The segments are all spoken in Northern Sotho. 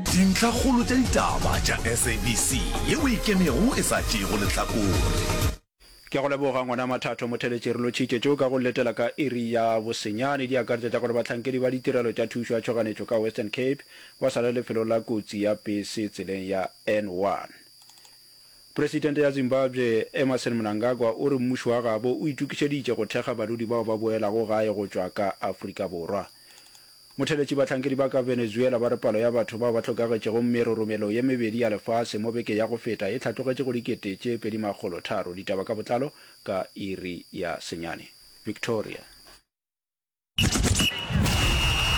Dintlhakgolo tša ditaba tša SABC ye o e kenego e sa tšeego lehlakore. Ke a go leboga ngwana Mathatho Motheletši re lotšhitše tšo ka go letela ka iri ya bosenyane di akaretša tša gore bahlankedi ba ditirelo tša thušo ya tšhoganetšo ka Western Cape ba sa le lefelong la kotsi ya pese tseleng ya N1. Presidente ya Zimbabwe Emmerson Mnangagwa o re mmušo wa gabo o itokišeditše go thekga badudi bao ba boelago gae go tšwa ka Afrika Borwa. Motheeletši Bahlankedi ba ka Venezuela ba re palo ya batho bao ba hlokagetšego meroromelo ye mebedi ya lefase mo beke ya go feta e hlatlogetše go dikete tše pedi makgolo tharo. Ditaba ka botlalo ka iri ya senyane. Victoria.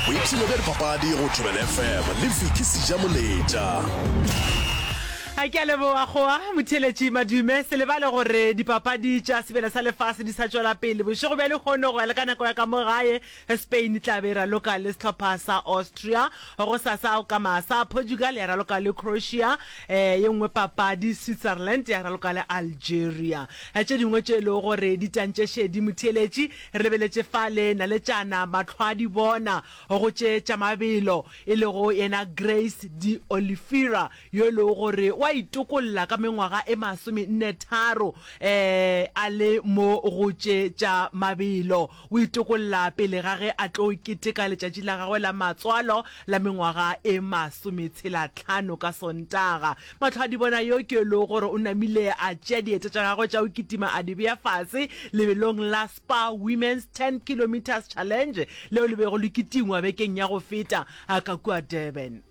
Boipshino bja dipapadi go Thobela FM le Vicky Sejamoletša. A ke a leboga goa motheletši Madume. Se lebale gore dipapadi tša sebele sa lefase di sa tšwela pele bošego bja lehono go ya le ka nako ya ka mo gae. Spain e tla be e raloka le sehlopha sa Austria, gosasa go ka masa Portugal ya raloka le Croatia, ye nngwe papadi Switzerland ya raloka le Algeria. Tše dingwe tše e lego gore di tantšešedi motheeletši re beletše fale, Naletšana Matlhwadi bona go tše tša mabelo e lego yena Grace de Oliveira yo e lego gore wa itokolla ka mengwaga e masome nne tharo a le mo go tše tša mabelo. O itokolla pele ga ge a tlo keteka letšatši la gagwe la matswalo la mengwaga e masometshelatlhano ka Sontaga. Matlhoadibona yo ke lo gore o namile a tšea dieta tša gagwe tša go kitima a di bea fase lebelong la Spa Women's Ten Kilometres Challenge leo le bego le kitingwa bekeng ya go feta ka kua Durban.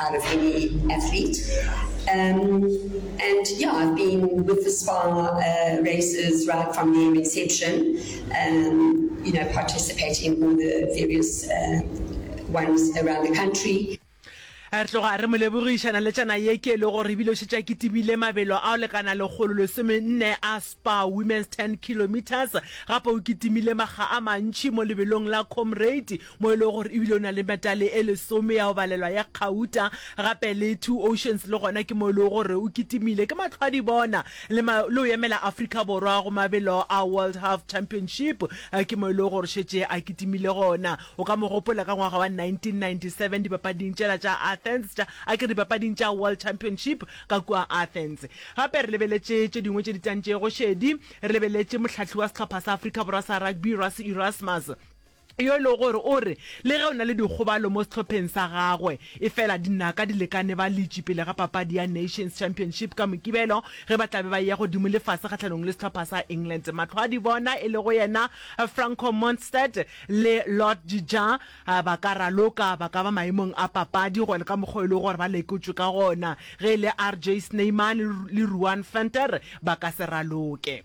out of any athlete. Um, and yeah, I've been with the spa uh, races right from their inception, um, you know, participating in all the various uh, ones around the country. re tloga re mo lebogišana le tšana ye ke e le gore ebile o šetša kitimile mabelo a o lekana lekgolo lesomenne a spa women's 10 kilometers gape o kitimile makga a mantšhi mo lebelong la comrade mo e lego gore ebile o na le metale e lesome ya go balelwa ya kgauta, gape le Two Oceans le gona ke mo e lego gore o kitimile. Ke matlhwadi bona le ma, le go emela Afrika Borwa go mabelo a World Half Championship, ke mo e lego gore šetše a kitimile gona. O ka mo gopola ka ngwaga wa 1997 dipapading tšela tša Athens, tša, a ke re dipapading tša World Championship ka kua Athens. Gape re lebeletše tše dingwe tše di tantšego šedi, re lebeletše mohlahli wa sehlopha sa Afrika Borwa sa rugby Rassie Erasmus, yo e lego gore o re le ge o na le dikgobalo mo sehlopheng sa gagwe, efela dinaka di lekane ba letše pele ga papadi ya Nations Championship ka Mokibelo ge ba tla be ba eya godimo le fase kgahlanong le sehlopha sa England. Mahlo a dibona e lego yena Franco Mostert le Lord de Jager ba ka raloka, ba ka ba maemong a papadi go ya le ka mokgwa o e lego gore ba lekotšwe ka gona. Ge e le RJ Snyman le Ruan Venter ba ka se raloke.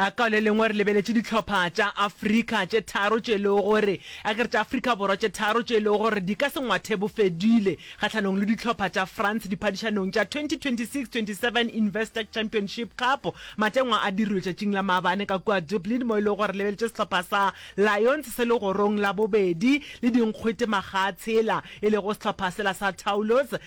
A Ka le lengwe re lebeletše dihlopha tša Afrika tše tharo tše e lego gore, a ke re tša Afrika Borwa tše tharo tše e lego gore di ka se ngwathe bofedile kgahlanong le dihlopha tša France diphadišanong tša 2026-27 Investec Championship Cup. Matengwa a dirwe tšatšing la maabane ka kua Dublin mo e lego gore lebeletše sehlopha sa Lions se legorong la bobedi le dinkgwete magatshela e lego sehlopha sela sa Toulouse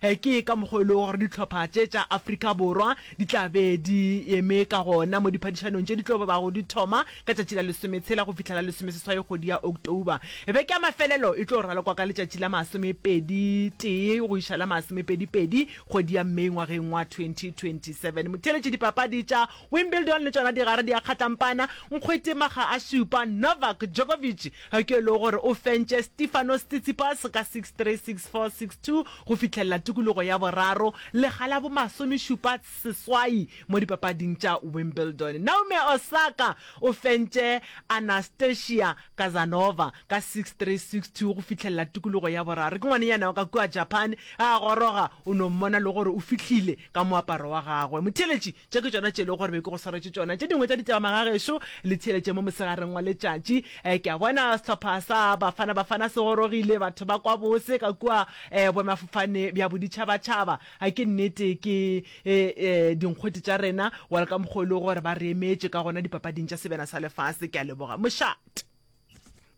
Ke ka mokgwa wo e lego gore dihlopha tše tša Afrika Borwa di tla be di eme ka gona mo diphadišanong tše di tlo bago di thoma ka tšatši la lesometshela go fihla la lesomeseswai kgwedi ya October. Beke ya mafelelo e tlo ralokwa ka letšatši la masomepedi tee go iša la masomepedi pedi kgwedi ya May ngwageng wa 2027. Motheeletši dipapadi tša Wimbledon le tšona digare di a kgatlampana, Nkgwete Makga a Šupa, Novak Djokovic Ge e le gore o fentše Stefanos Tsitsipas ka six three, six four, six two go fihlelela tikologo ya boraro, lega la bomasomešupa seswai mo dipapading tša Wimbledon, Naomi Osaka o fentše Anastasia Kazanova ka six three, six two go fihlelela tikologo ya boraro. Ke ngwanenyana wa ka kua Japan, ge a goroga o no mmona le gore o fihlile ka moaparo wa gagwe motheeletši. Tše ke tšona tše e lego gore be ke go swaretše tšona. Tše dingwe tša ditaba magagešo le theeletše mo mosegareng wa letšatši. Ke a bona sehlopha sa Bafana Bafana se gorogile, batho ba kwa bose ka kua boemafofane bja boditšhabatšhaba. Ke nnete ke dinkgwete tša rena, wa le ka mokgwa o e lego gore ba re emetše ka gona dipapading tša sebjana sa lefase. Ke a leboga mošate.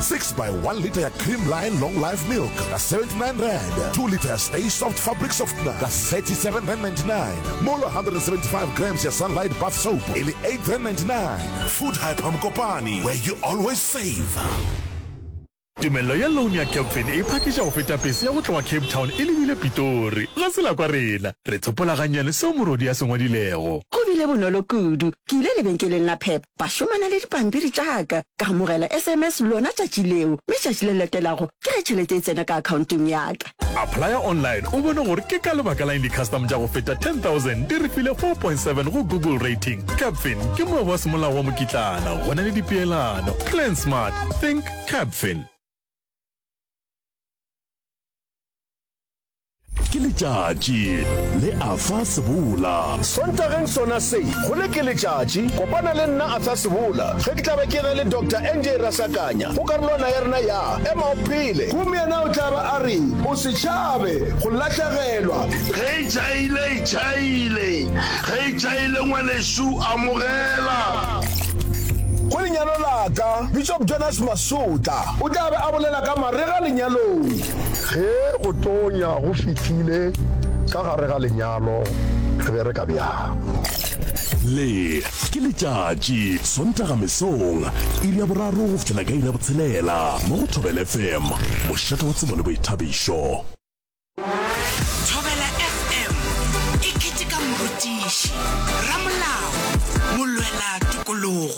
6 by 1 litre ya Creamline Long Life Milk ka 79 rand, 2 litre ya Stay Soft Fabric Softener ka 37 rand 99, mola 175 grams ya Sunlight Bath Soap e le 8 rand 99. Food Hyper Mokopane, where you always save. Tumello ya loan ya Capfin e phakiša go feta pese ya go tloga Cape Town e lebile Pitori. Ga se la kwa rena. Re tsopola gannyane seo morwadi a se ngwadilego. Go bile bonolo kudu. Ke ile lebenkeleng la Pep ba šomana le dipampiri tša ka, ka amogela sms lona tšatši leo, mme tšatši le latelago ke ge tšhelete e tsena ka akhaonteng ya ka. Applya online o bone gore ke ka lebaka la'ng di-custom tša go feta 10,000 di re file 4.7 go Google Rating. Capfin ke moabo wa semolao wa mokitlana go na le dipeelano. Plan smart, think Capfin. ke letšatši le afa sebola sontageng sona se go le ke letšatši kopana le nna afa sebola ge ke tla ba ke ge le dr nj rasakanya go karolwana ya rena ya ema o phele gomme yena o tla ba a re o se tšhabe go lahlegelwa ge e tšhaile e tšhaile ge e tšhaile ngwanešu amogela go lenyalo la ka bishop jonas masotla o tla be a bolela ka marega lenyalong Ge go tonya go fihlile ka gare ga lenyalo, re bereka bjang? Le ke letšatši, Sontaga mesong, iri ya boraro go fihlela ka iri ya botshelela, mo go Thobela FM, mošate wa tsebo le boithabišo. Thobela FM e keteka morutiši, ramolao, molwela tokologo.